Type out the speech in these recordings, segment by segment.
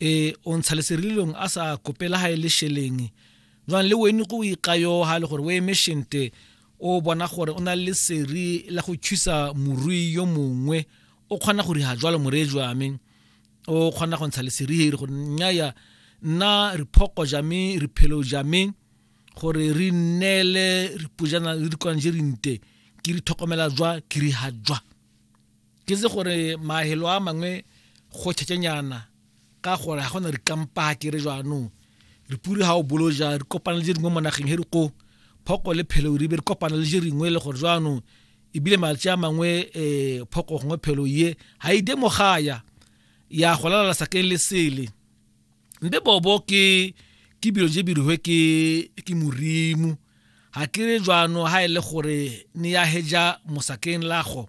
e o ntsha leserililong a sa kopela ga e le sheleng jwang le wene go ikayo ga le gore o eme shente o bona gore o na le seri la go thusa morui yo mongwe o kgona go riga jwalo moree jwame o kgona go ntsha leseriheri gore nnyaya nna re phoko jame re phelo jame gore re nnele re pujana le dikwanjerinte ke re tlhokomela jwa ke riga jwa ke se gore mahelo a mangwe go tšhetšenyana ka gore ga gona rikampa ke re jaanong re pure ga o bolo ja re kopana le je dingwe mo nageng he re ko phoko le phelo ribe re kopana le je ringwe le gore jaanong ebile malatsi a mangwe um phoko gongwe phelo ye ga e demo gaya ya go lalala sakeng le sele mpe bobo ke ke bilo je birihwe ke ke morimo ga ke re jwano ga e le gore ne ya heja mosakeng lago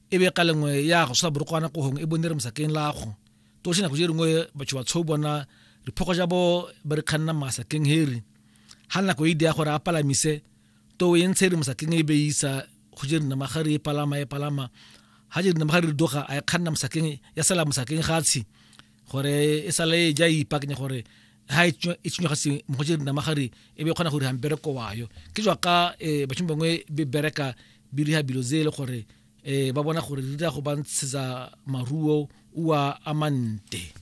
e be ka lengwe ya go sa borokwana kohong e bone re mosakeng lago to se nako je dingwe batho ba tsho bona re phoko ja bo ba re khanna masakeng heri ha nako e dia gore a palamise to e ntshe re mosakeng e be isa go je nna magare e palama e palama ha je nna magare doga a e khanna mosakeng ya sala mosakeng gatshi gore e sale e ja ipakenya gore ha e tsenya ga se mo je nna magare e be khona gore ha mbereko wayo ke jwa ka eh, batho bangwe be bereka biriha bilo tse e le gore um ba bona gore di dira go ba ntshetsa maruo ua amante